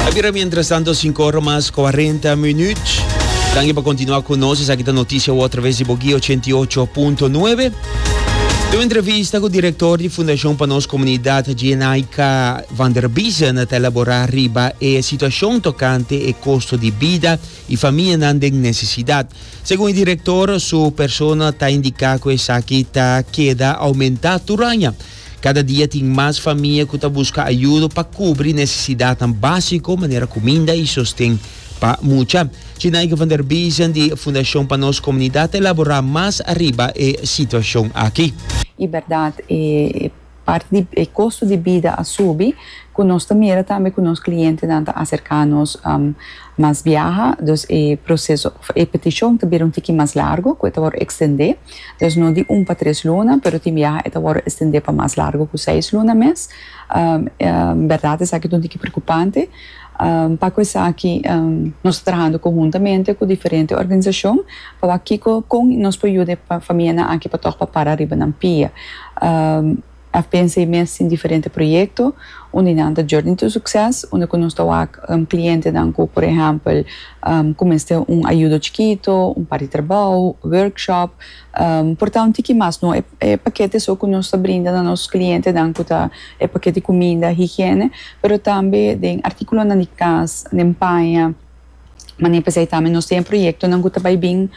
A bira mientras tanto 5 ora mas 40 minuut. Danki pa continua cu nos. Esaki ta noticia wor través di Boguí 88.9. De un entrevista cu director di Fundacion pa nos comunidad Jenaika van der Biezen ta elabora riba e situacion tocante e costo di bida y famianan den necesidad. Segun e director su persona ta indica cu esaki ta keda aumenta tur aña. Kada dia tin mas famia ku ta buska ayudo pa kubri nesesidatnan básiko manera kuminda i sosten pa mucha. Tjinaike van der Biesen di Fundashon pa Nos Komunidat ta elaborá mas ariba e situashon aki. I bèrdat e parti di e kosto di bida a subi ku nos ta mira tambe ku nos klientenan ta aserká nos mas biaha. Dus e proseso òf e petishon ta bira un tiki mas largu ku e ta wòrdu ekstendé. Dòs no di un pa tres luna, pero tin biaha e ta wòrdu estendé pa mas largu ku seis luna mes. Bèrdat esaki ta un tiki preokupante. Pa kue esaki nos ta trahando konhuntamente ku diferente organisashon pa wak kiko kon nos por yuda e famianan aki pa tòg para para riba nan pia. A pensa e mes tin diferente proyekto, un di nan ta Journey to Succes, unda ku nos ta wak klientenan ku por ehèmpel ku mester un ayudo chikito, un par di trabou, workshop. Por ta un tiki mas no e pakete so ku nos ta brinda na nos klientenan ku ta e pakete kuminda, higiene, pero tambe den artíkulonan di kas, den paña. Mane pesei tambe nos tin e proyectonan cu ta bay bin,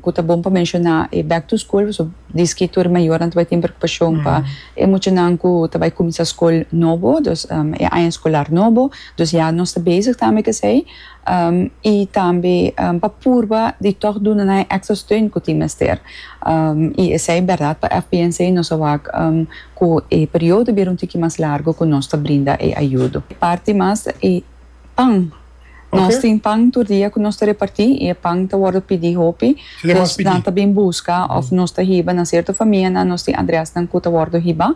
cu ta bon pa menciona e back to school, pasobra diski tur e mayornan ta bay tin preocupacion pa e muchanan cu ta bay cuminsa scol nobo, dus e aña escolar nobo, dus ya nos ta bezig tambe cu esey, y tambe pa purba di toch duna nan e extra steun cu tin mester, y esey berdad pa FPNC nos a wak cu e periodo bira un tiki mas largo cu nos ta brinda e ayudo. Parti mas e. Pan. Nos tin pan tur dia ku nos ta repartí i e pan ta wòrdu pidí hopi. Pos nan ta bin buska òf nos ta hiba na sierto famianan, nos tin adrèsnan ku ta wòrdu hibá.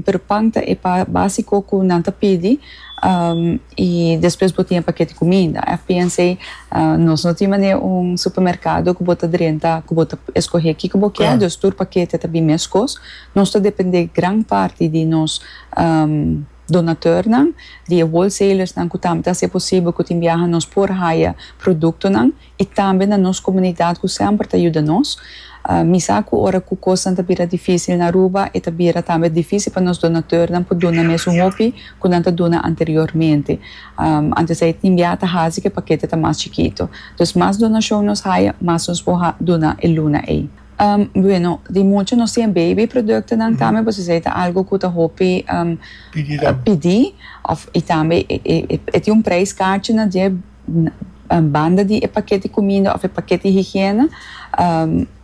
Pero pan ta e básiko ku nan ta pidi i despues bo tin e pakèt di kuminda. FPNC, Nos no tin manera un supermerkado ku bo ta drenta, ku bo ta eskohé kiko bo kier, dus tur pakèt ta bin meskos. Nos ta dependé gran parti di nos. Donatornan di e wholesalersnan ku tambe ta hasi e posibel ku tin biaha nos por haya produktonan i tambe na nos komunidat ku semper ta yuda nos. Mi sa ku ora ku kosnan ta bira difísil na Aruba e ta bira tambe difísil pa nos donatornan por duna mes un hopi ku nan ta duna anteriormente. Antes ei tin biaha ta hasi ku e pakete ta mas chikitu. Dus mas donashon nos haya, mas nos por duna e luna ei. Bueno, di mucha nos tin e baby productonan tambe, pues esei ta algo cu ta hopi pidi of y tambe e tin un prijs carchi na dier banda di e paketi cuminda of e paketi higiene,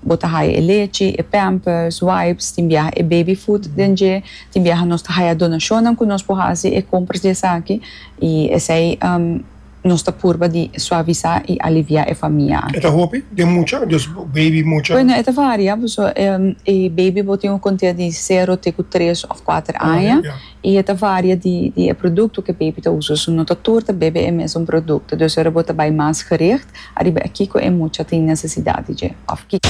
bo ta haya e lechi, e pampers, wipes, tin biaha e baby food den dje, tin biaha nos ta haya donacionnan cu nos por haci e compras di esaki y esei. Nos ta purba di suavisá i aliviá e famia aki. E ta hopi den mucha, dus beibi mucha? Bueno, e ta varia, paso e beibi bo tin un kontea di sero te ku tres òf kuater aña i e ta varia di e produkto ku e beibi ta usa. So no ta tur ta bebe e mesun produkto. Dus ora bo ta bai mas gericht. Ariba e kiko e mucha tin necesidad di dje of kiko.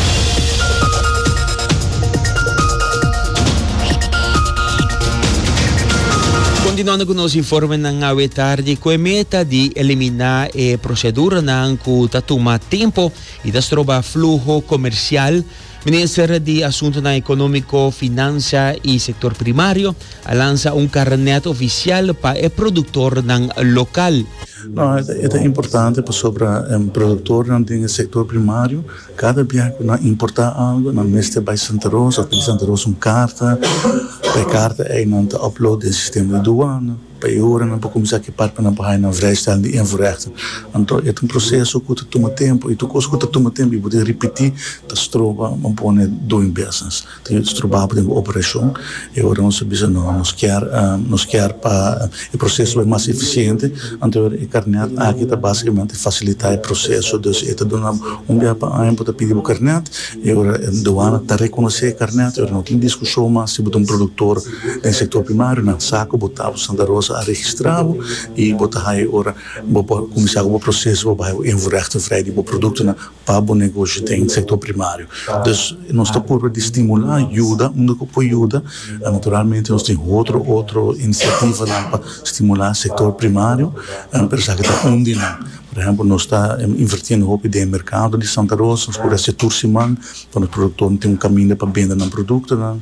Continuando cu nos informenan awe tardi cu e meta di elimina e proceduranan cu ta tuma tempo y ta stroba fluho comercial Minister di Asuntunan Economico, Financia y Sector Primario a lansa un carnet oficial pa e productornan local. No, e ta importante pasobra e productornan den e sector primario cada bia cu nan importa algo nan mester bay Santa Rosa of di Santa Rosa un carta, pa e carta ey nan ta upload den sistema di duana. Pa e ora nan por kuminsá ki parpanan pa haña nan vrijstaal di invoerrechten, anto e ta un proseso ku ta tuma tempu i tur kos ku ta tuma tempu i bo tin ripití ta stroba bo pone doing business, ta yuda stroba bo den bo operashon. E ora nos a bisa no, nos kier nos kier pa e proseso bai mas efisiente, anto e ora e karnèt aki ta basikamente fasilitá e proseso, dus e ta duna bo un bia pa aña bo ta pidi bo karnèt, e ora duana ta rekonosé e karnèt, e ora no tin diskushon mas si bo ta un produktor. Den sektor primario nan sa ku bo ta bo Santa Rosa a registra bo i bo ta haña e ora bo por kuminsá ku bo proseso pa bai bo invoerhechting vrij di bo produktonan pa bo negoshi den sektor primario. Dus nos ta purba di stimulá yuda unda ku por yuda. Naturalmente nos tin otro otro inisiativanan pa stimulá sektor primario pero esaki ta un di nan. Por ehèmpel nos ta invertiendo hopi den e merkado di Santa Rosa nos pudi haci tur siman pa nos produktornan tin un kaminda pa bende nan produktonan.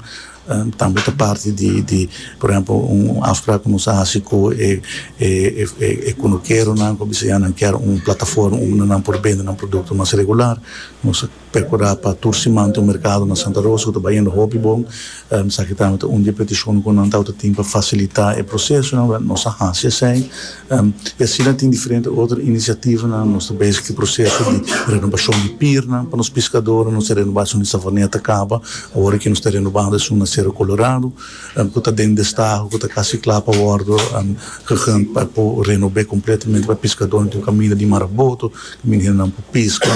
Tambe ta parti di di por ehempel un afsprak ku nos a hasi ku e e e kunukeronan ku a bisa ya nan kier un plataforma unda nan por bende nan produkto mas regular nos a perkurá pa tur siman tin un merkado na Santa Rosa ku ta bayendo hopi bon esaki tambe ta un di e petishonnan ku nan tabata tin pa fasilitá e prosesonan nos a hasi esei. I asina tin diferente otro iniciativanan. Nos ta bezig cu e proceso di renobacion di pirnan pa nos piscadornan. Nos a renoba esun di Savaneta caba. Awor aki nos ta renobando esun na Cerro Colorado cu ta den destaho, cu ta casi cla pa wordo gehunt pa por renobe completamente pa e piscadornan. Tin un caminda di Mar Aboto caminda hendenan por pisca.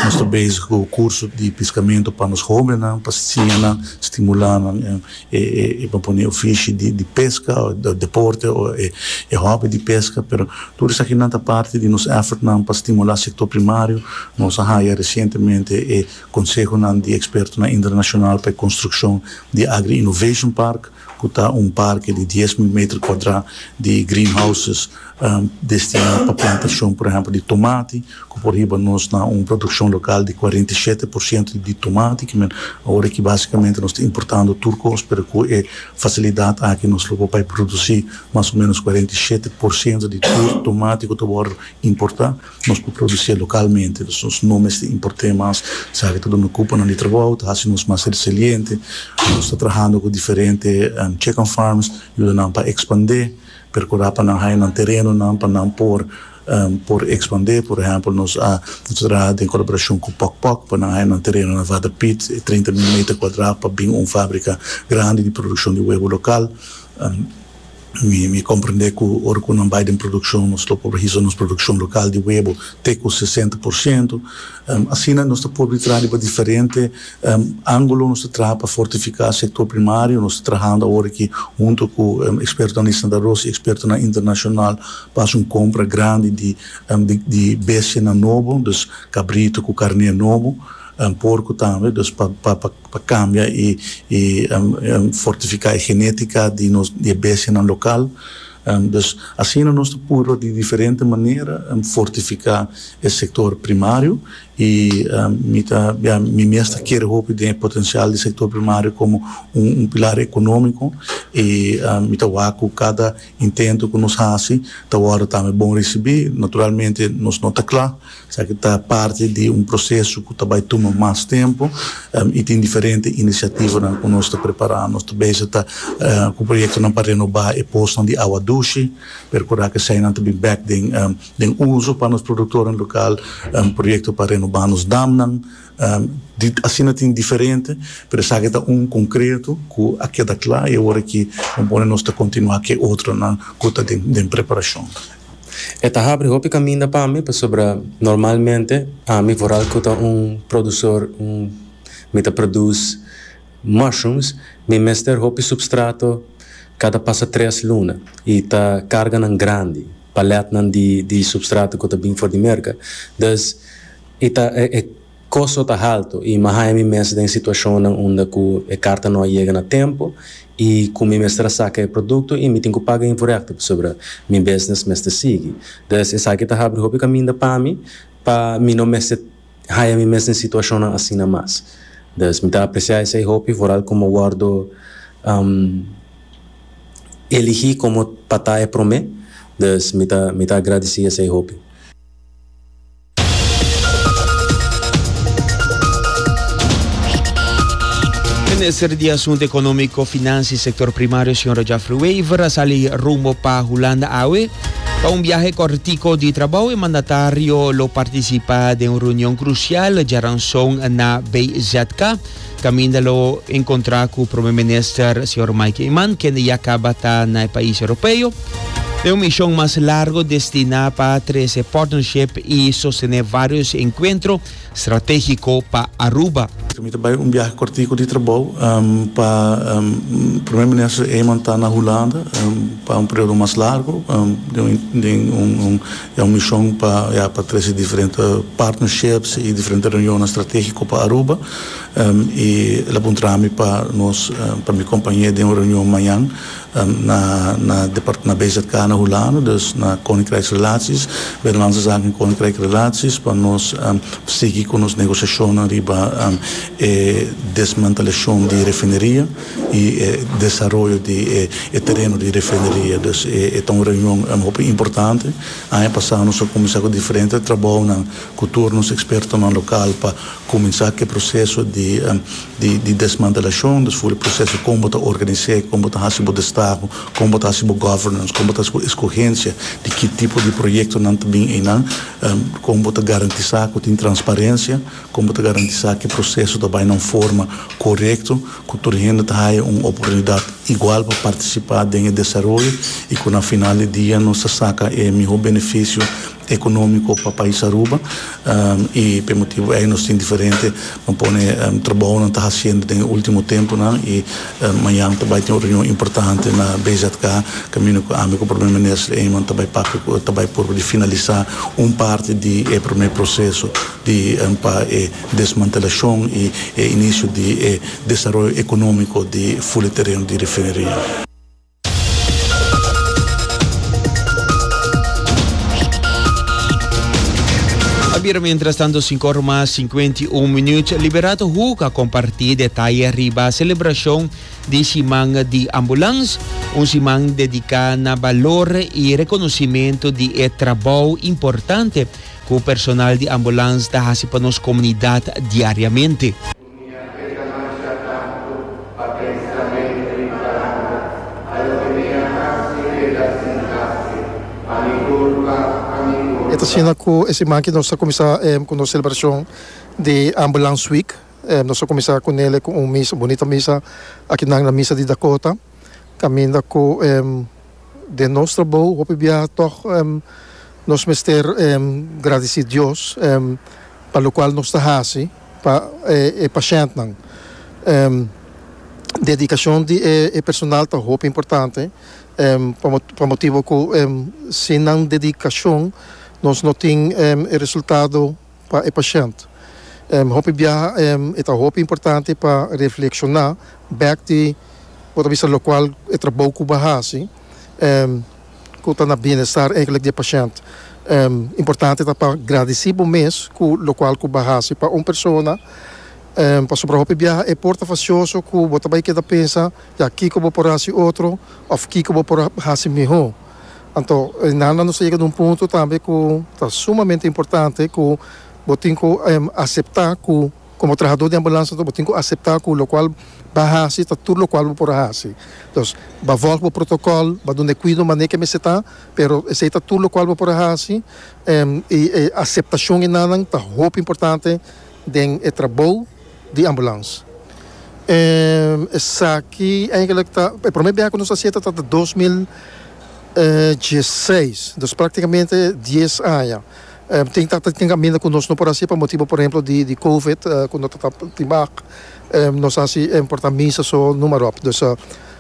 Nos ta bezig cu curso di piscamento pa nos hobennan pa siña nan, stimula nan. E propone ofishi di peska o deporte o e hobby di peska pero tur esakinan ta parti di nos effortnan pa stimula sector primario. Nos a haya recientemente e consehonan di expertonan internacional pa e construccion di Agri Innovation Park cu ta un parke di dies mil meter cuadra di greenhouses destina pa plantacion por ehemplo di tomati, Cu por hiba nos na un produccion local di cuarenta y shete por ciento di tomate ki men awor aki basicamente nos ta importando tur cos pero cu e facilidad aki nos lo por bay produci mas o menos cuarenta y shete por ciento di tur tomate cu ta worde importa nos por producie localmente dus nos no mester importe mas sa aki ta duna cupo nan di trabao ta haci nos mas resiliente nos ta trahando cu diferente check and farms yuda nan pa expande percura pa nan haya nan terenonan pa nan por Por ekspandé, por ehèmpel nos a nos ta traha den kolaborashon ku Pòk Pòk pa nan haña nan tereno na Water Piet, e trinta mil meter kuadrá pa bin un fábrika grandi di produkshon di webo lokal. Mi mi komprendé ku ora ku nan bai den produkshon nos lo por hisa nos produkshon lokal di webo te ku sesenta por siento. Asina nos ta por traha riba diferente Angulo nos ta traha pa fortifiká sektor primario. Nos ta trahando awor aki huntu ku eksperto nan di Santa Rosa i ekspertonan internashonal pa hasi un kompra grandi di di bestianan nobo, dus kabritu ku karné nobo, porku tambe, dus pa pa pa kambia i i fortifiká e genétika di nos di e bestianan lokal. Dus asina nos ta purba di diferente manera fortifiká e sektor primario I mi ta bia mi mes ta kere hopi den e potensial di sektor primario komo un pilar ekonómiko i mi ta wak ku kada intento ku nos hasi ta wòrdu tambe bon risibí. Naturalmente nos no ta kla esaki ta parti di un proseso ku ta bai tuma mas tempu i tin diferente inisiativanan ku nos ta prepará. Nos ta bisa ta ku proyektonan pa renobá e posnan di awa dushi, perkurá ku eseinan ta bin bèk den Den uso pa nos produktornan lokal, proyekto pa renobá nos damnan, di asina tin diferente, pero esaki ta un konkreto ku a keda kla i e wòrdu ki bo pone nos ta kontinuá ku e otronan ku ta den preparashon. E ta habri hopi kaminda pa mi pasobra normalmente ami foral ku ta un produsor, mi ta produce mushrooms, mi mester hopi substrato kada pasa tres luna i ta karganan grandi. paletnan di substrato ku ta bin for di merka. Dus e ta e kosto ta haltu i mi a haña mi mes den situashonnan unda ku e karta no a yega na tempu i ku mi mester a saka e produkto i mi tin ku paga invorekto pasobra mi bisnis mester sigui. Dus esaki ta habri hopi kaminda pa mi pa mi no mester haya mi mes den situacionnan asina mas. Des mi ta aprecia esey hopi vooral como wordo eligi como pa ta e prome, des mi ta mi ta agradeci esey hopi. Minister di Asunto Economico, Financi y Sector Primario, Sra. Jafre Wever, a sali rumbo pa Hulanda awe. Pa un biahe kòrtiku di trabou e mandatario lo partisipá den un reunion krusial djaranson na BZK. Kaminda lo enkontrá ku Prome Minister señor Mike Eman kende ya kaba ta na e pais Europeo den un mishon mas largu destiná pa trese partnership i sostené vários enkuentro stratégiko pa Aruba. Mi ta bai un biahe kòrtiku di trabou pa Primé Minister Eman ta na Hulanda pa un periodo mas largu den un ya un mishon pa ya pa trese diferente partnerships i diferente reunionnan stratégiko pa Aruba i el a puntra mi pa nos pa mi kompañe den un reunion mañan. Na na depart na BZK na Hulanda, dus na Koninkrijksrelaties, Binnenlandse Zaken en Koninkrijkrelaties, pa nos sigui ku nos negosiashonnan riba e desmantelashon di e refineria i e desaroyo di e tereno di e refineria. Dus e ta un reunion hopi importante. Aña pasá nos a kuminsá ku diferente trabounan. cu tur nos expertonan local pa cuminsa cu e proceso di di desmantelacion, dus full e proceso con bo ta organise, con bo ta haci bo destaho, con bo ta haci bo governance, con bo ta haci bo escogencia di ki tipo di proyectonan ta bin eynan, con bo ta garantisa cu tin transparencia, con bo ta garantisa cu e proceso ta bay na un forma corecto, cu tur hende ta haya un oportunidad igual pa participa den e desaroyo y cu na final di dia nos ta saca e miho beneficio economico pa pais Aruba y p'e motibo ey nos tin diferente pa pone trabaonan ta haciendo den e ultimo temponan y mañan ta bay tin un reunion importante na BZK caminda cu ami cu Prome Minister Eman ta bay papia cu el ta bay probo di finalisa un parti di e prome proceso di pa e desmantelacion y e inicio di e desaroyo economico di Fuli tereno di Refineria. A bira mientras tanto, 5 ora más 51 minutos. Liberato Huca compartí detalle riba celebración de Siman de Ambulance, un siman dedicado na valor y reconocimiento de e trabajo importante cu personal de ambulance ta haci pa nos comunidad diariamente. E ta asina cu e siman aki nos ta cuminsa cu nos celebracion di Ambulance Week. Nos a cuminsa cu nele cu un misa, bunita misa aki nan na Misa di Dakota. Caminda cu den nos trabou hopi bia tog nos mester gradici Dios pa locual nos ta haci. pa e pashèntnan. Dedikashon di e personal ta hopi importante pa motibu ku sin nan dedikashon nos no tin e resultado pa e pashènt. Hopi biaha e ta hopi importante pa reflekshoná bèk di bo ta bisa lokual e trabou ku bo a hasi. ku ta na bienestar eigelik di e pashènt. Importante ta pa gradisí bo mes ku lokual ku bo a hasi pa un persona. Pasobra hopi biaha e por ta fasioso ku bo ta bai keda pensa ya kiko bo por hasi otro òf kiko bo por hasi mihó. Anto e nana nos a yega na un punto tambe ku ta sumamente importante ku bo tin ku aseptá ku. Komo trahadó di ambulansa ta bo tin ku aseptá ku lokual ba hasi ta tur lokual bo por a hasi. Dus ba vòlg bo protokòl, ba duna e kuido manera ke mester ta, pero esei ta tur lokual bo por a hasi en i e aseptashon i nannan ta hopi importante den e trabou di ambulans. E esaki eigenlik ta e promé bia ku nos a sienta ta ta dos mil e dieseis, dus praktikamente dies aña. Tin ta tin kaminda ku nos no por hasi pa motibu por ehemplo di di covid ku no ta tin bak nos ta hasi por ta misa so numa ròp dus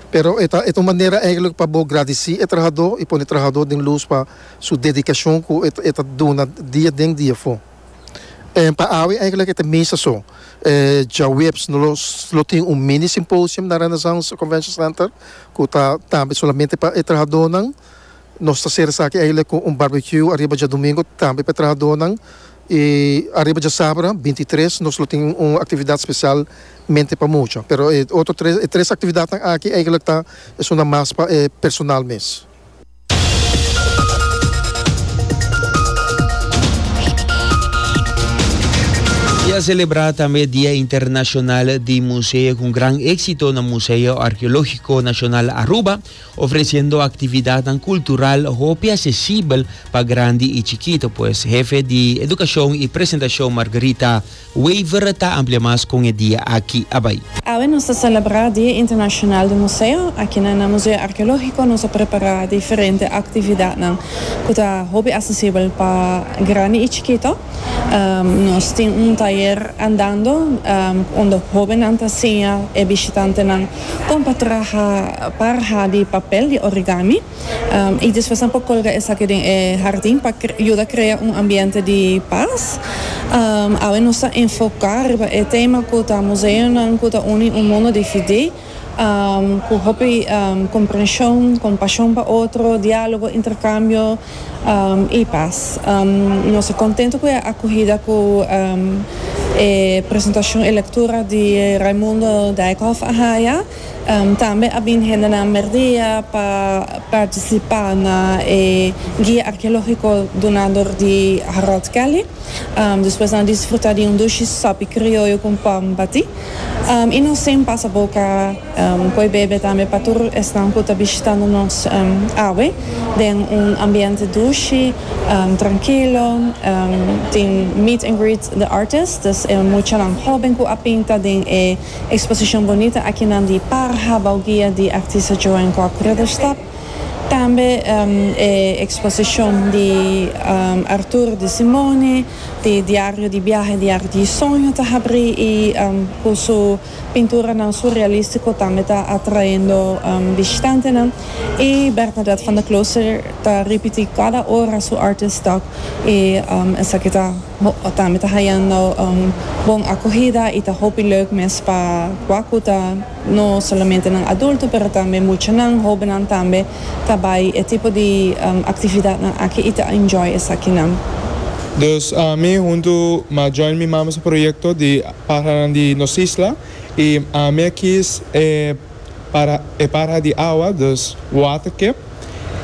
pero e ta e ta un manera eigenlijk pa bo gradisí e trahadó i pone e trahadó den lus pa su dedikashon ku e e ta duna dia den dia afó. Pa awe eigenlijk e ta misa so djaweps no lo tin un mini simposium na Renaissance Convention Center ku ta tambe solamente pa e trahadónan Nos ta ser esaki eile ku un barbecue ariba djadumingu tambe pa e trahadónan. I ariba djasabra binti i tres nos lo tin un aktividat spesial mente pa mucha. Pero e otro tres, e tres aktividatnan aki eigelik ta esundan mas pa e personal mes. I a selebrá tambe e Dia Internashonal di Museo ku un gran éksito na Museo Arkeológiko Nashonal Aruba. ofreciendo actividadnan cultural hopi accesibel pa grandi y chikito, pues Hefe di Educacion y Presentacion Margaritha Wever ta amplia mas con e dia aki a bay. Awe nos ta celebra Dia Internacional di Museo. Aki na nan Museo Archeologico nos a prepara diferente actividadnan cu ta hopi accesibel pa grandi y chikito. Nos tin un tayer Andando unda hobennan ta siña e bishitantenan kon pa traha parha di papel di origami i despues nan por kolga esaki den e hardin pa yuda krea un ambiente di pas. Awe nos ta enfoká riba e tema ku ta museonan ku ta uni un mundo dividí. Cu hopi comprension, compasion pa otro, dialogo, intercambio y paz. Nos ta contento cu e acuhida cu e presentacion, e lectura di Raimundo Dijkhof a haya. Tambe a bin hendenan Merdia pa participa na e guia archeologico duna dor di Harold Kelly. Despues nan disfruta di un dushi sopi crioyo cu pan batí. I nos sin pasa boca poi bebe tambe pa tur esnan cu ta bishitando nos awe den un ambiente dushi, trankilo. Tin meet and greet the artist, dus e muchanan hoben cu a pinta den e exposicion bonita akinan di Parha Bauguia di artista Joan Kok Ruddestad. Tambe e eksposishon di Artur di Simone di Diario di biahe di Arti i Soño ta habrí i ku su pinturanan surrealístiko tambe ta atraendo bishtantenan i Bernadette van der Klooster ta ripití kada ora su Artist Talk i esaki ta tambe ta hayando bon akohida i ta hopi leuk mes pa kua ku ta No solamente nan adulto pero tambe muchanan, hobennan tambe ta bai e tipo di actividadnan aki y ta enjoy esakinan. Dus ami hunto m'a join mi mama su proyecto di Parahanan di Nos Isla y ami a kies e paraha di awa, dus water cap.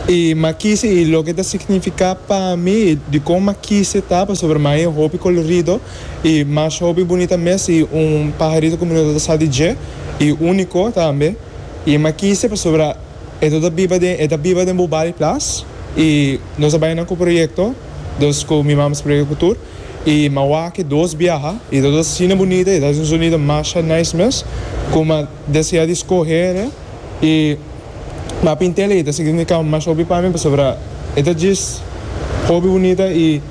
i m'a kise i loke ta signifiká pa mi i di kon m'a kise ta pasobra m'a e hopi kolorido i masha hopi bunita mes i un paharito ku mi no ta sa di dje i úniko tambe i m'a kise pasobra e no ta biba den e ta biba den Bubali Plas i nos a bai nan ku proyekto dos ku mi mamas proyekto ku tur i m'a wak e dos biaha i ta dos asina bunita i ta hasi un sonido masha nice mes kuma. Desea di scoher e y m'a pintel e y ta significa mas hopi pa mi pasobra e ta djis hopi bunita y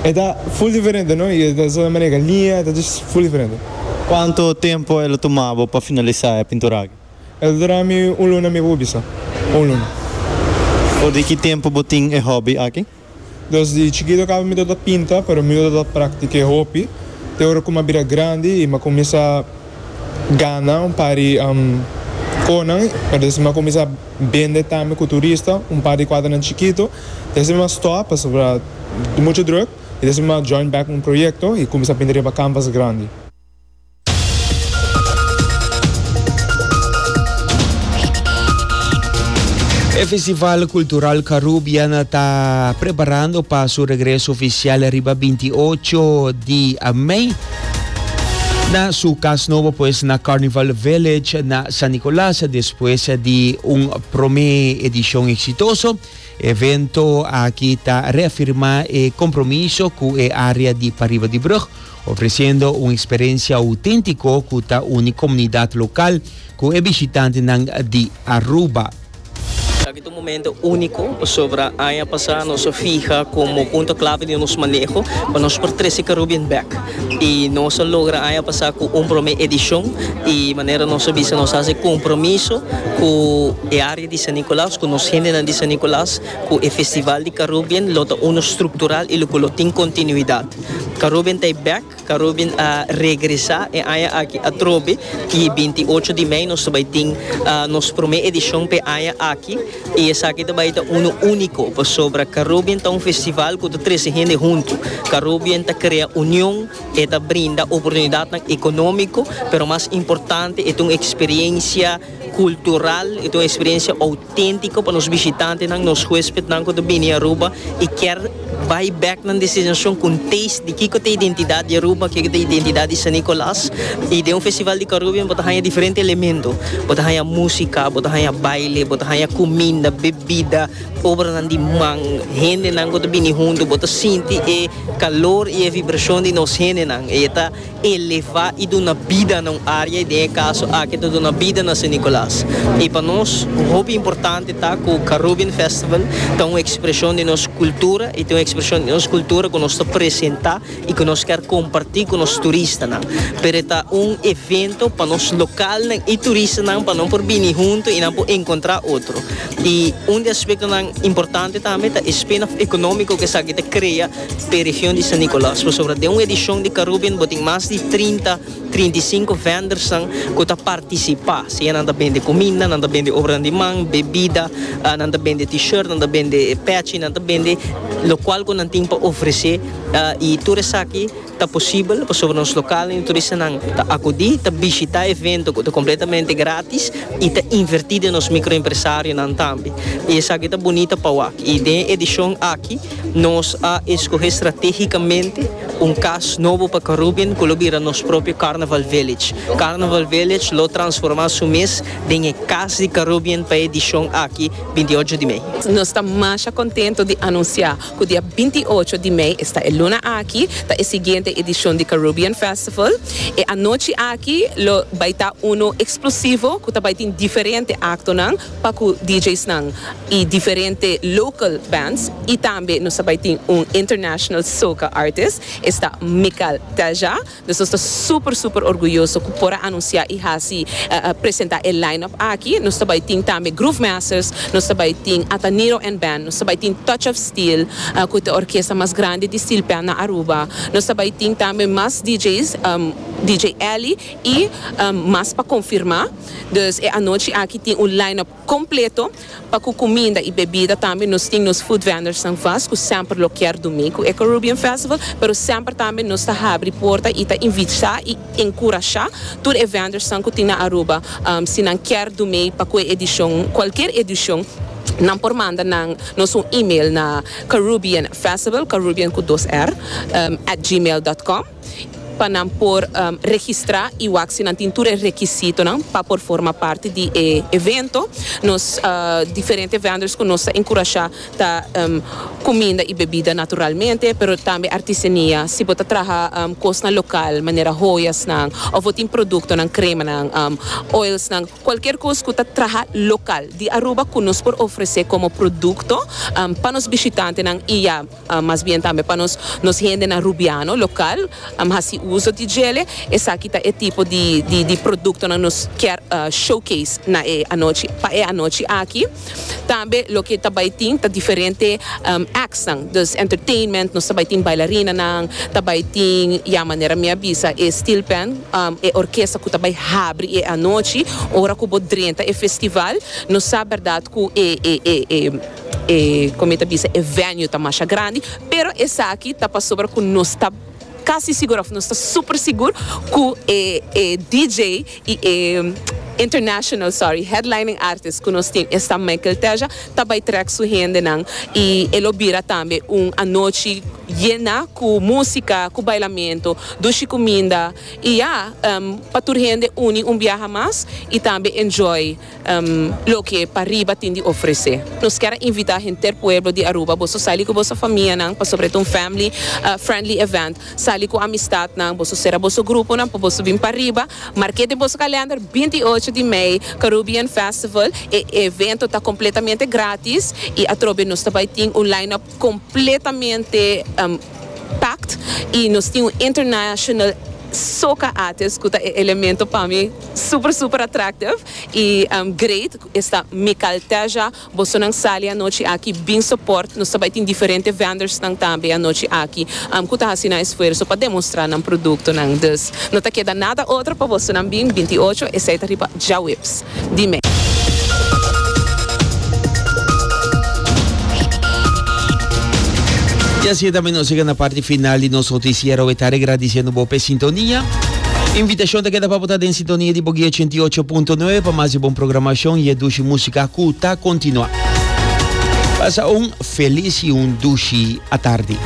e ta full diferente no y e ta sa manera linea ta djis full diferente. Cuanto tempo el a tuma bo pa finalisa e pintura aki? El a dura mi un luna mi bo bisa un luna. For di ki tempo bo tin e hopi aki? Desde chikito caba mi ta ta pinta pero mi no ta ta practique hopi, te ora cu m'a bira grandi y m'a cuminsa gana un par di conan pero despues m'a cuminsa bende tambe cu turista un par di cuadernan chikito y asina m'a stop pasobra mucho druk y despues m'a join back un proyecto y cuminsa pinta riba canvas grandi. E Festival Cultural Carubiana ta preparando pa su regreso oficial riba 28 di mei na su cas nobo pues na Carnival Village na San Nicolas despues di un prome edicion exitoso. Evento aki ta reafirma e compromiso cu e area di pariba di brug Ofreciendo un experiencia autentico cu ta uni comunidad local cu e bishitantenan di Aruba. Taki ta un momento unico pasobra aña pasa nos a fiha como punto clave di nos maneho pa nos por trece Carubbean back y nos a logra aña pasa cu un prome edicion y manera nos a bisa nos haci compromiso cu e area di San Nicolas cu nos gentenan di San Nicolas Cu e Festival di Carubbean lo ta uno structural y loke lo tin continuidad. Carubbean ta e bek, Carubbean a regresa e aña aki atrobe y e binti i ocho di mei nos ta bay tin nos prome edicion p'e aña aki y esaki ta bay ta uno unico pasobra Carubbean ta un festival cu ta trece hende hunto. Carubbean ta crea union, e ta brinda oportunidadnan economico pero mas importante e ta un experiencia cultural, e ta un experiencia. Auténtiko pa nos bishitantenan, nos huéspednan ku ta bini Aruba i kier bai bèk nan destinacion ku un taste di kiko ta e identidat di Aruba, kiko ta e identidat di San Nicolas. I den un festival di Carubbean bo ta haña diferente elemento. Bo ta haña músika, bo ta haña baile, bo ta haña kuminda, bebida, obranan di man, hendenan ku ta bini huntu. Bo ta sinti e kalor i e vibrashon di nos hendenan. E ta. Elevá i duna bida na un área i den e kaso aki ta duna bida na San Nicolas. I pa nos hopi importante ta ku Carubbean Festival ta un ekspreshon di nos kultura i ta un ekspreshon di nos kultura ku nos ta presentá i ku nos kèr kompartí ku nos turistanan. Pero e ta un evento pa nos lokalnan i turistanan pa nan por bini huntu i nan por enkontrá otro. I un di aspektonan importante tambe ta e spin-off ekonómiko ku esaki ta krea. p'e region di San Nicolas pasobra den un edishon di Carubbean bo tin mas di trinta, trinta i sinku vendersnan ku ta partisipá, sea nan ta bende kuminda, nan ta bende obranan di man, bebida, nan ta bende t-shirt, nan ta bende pèchi, nan ta bende lokual ku nan tin pa ofresé i tur esaki ta posibel pasobra nos lokalnan i turistanan ta akudí, ta bishitá evento ku ta kompletamente grátis i ta invertí den nos mikroempresarionan tambe i esaki ta bunita pa wak i den e edishon aki. Nos a eskohé stratégikamente un kas nobo pa Carubbean ku lo bira nos propio Carnaval Village. Carnaval Village lo transformá su mes den e kas di Carubbean pa e edishon aki binti ocho di mei. Nos ta masha kontento di anunsiá ku dia binti ocho di mei, esta e luna aki, ta e siguiente edishon di Carubbean Festival. E anochi aki lo bai ta uno eksplosivo ku ta bai tin diferente aktonan pa cu DJ's nan y diferente local bands y tambe nos ta bay tin un international soca artist esta Mical Telja nos nos ta super super orguyoso cu por a anuncia y haci presenta e line up aki nos ta bay tin tambe Groove Masters nos ta bay tin Ataniro and band nos ta bay tin Touch of Steel cu ta e orkesta mas grandi di steel pan na Aruba nos ta bay tin tambe mas DJ's DJ Ellie. I mas pa konfirmá, dus e anochi aki tin un line-up kompleto pa ku kuminda i bebida tambe nos tin nos food vendors-nan vast ku semper lo kier dumi ku e Carubbean Festival pero semper tambe nos ta habri porta i ta invitá i enkurashá tur e vendors-nan ku tin na Aruba si nan kier dumi pa ku e edishon kualkier edishon nan por manda nan nos un email na carubbeanfestivalcarubbean ku dos r at gmail dot com. pa nan por registra y wak si nan tin tur e rekisitonan pa por forma parti di e evento. Nos diferente vendors cu nos ta encurasha ta cuminda y bebida naturalmente, pero tambe artisenia. Si bo ta traha cosnan local manera hoyasnan of bo tin productonan, cremanan, oilsnan, cualkier cos cu ta traha local di Aruba cu nos por ofrece como producto pa nos bishitantenan y ya. Mas bien tambe pa nos nos hendenan Rubiano lokal hasi uso di djele. Esaki ta e tipo di di produktonan nos kier showcase na e anochi pa e anochi aki. Tambe loke ta bai tin ta diferente actsnan dus entertainment, nos ta bai tin bailarinanan, ta bai tin ya manera mi a bisa e steel band e orkesta ku ta bai habri e anochi ora ku bo drenta e festival nos sa berdad ku e e e. E con mi ta bisa e venue ta masha grandi pero esaki ta pasobra cu nos ta casi sigur of nos ta super sigur cu e e DJ y e international sorry headlining artist cu nos tin esta Michael Teja ta bay trek su hendenan y e lo bira tambe un anochi yena cu musica cu bailamento dushi cuminda y ya pa tur hende uni un biaha mas y tambe enjoy Loke pa riba tin di ofrece. Nos kier a invita henter pueblo di Aruba boso sali cu boso famia nan pasobra eta un family friendly event. Sali cu amistad nan boso cera boso grupo nan pa boso bin pa riba. Marke den boso calender binti y ocho di mei Carubbean festival. E evento ta completamente gratis y atrobe nos ta bay tin un line up. completamente packed y nos tin un international soca artist cu ta e elemento pa mi super super attractive y great esta Mical Teja bosonan sali anochi aki bin support nos ta bay tin diferente vendors nan tambe anochi aki cu ta haci nan esfuerzo pa demostra nan producto nan dus no ta keda nada otro pa bosonan bin binti ocho esey ta riba djawips. di me. Y así tambe nos llega na parti final di nos noticiero de tarde agradiciendo bo p'e sintonia. Invitacion ta keda pa bo ta den sintonia di Boguey 88.9 pa mas di bon programacion y e dushi musica cu ta continua. Pasa un feliz y un dushi atardi.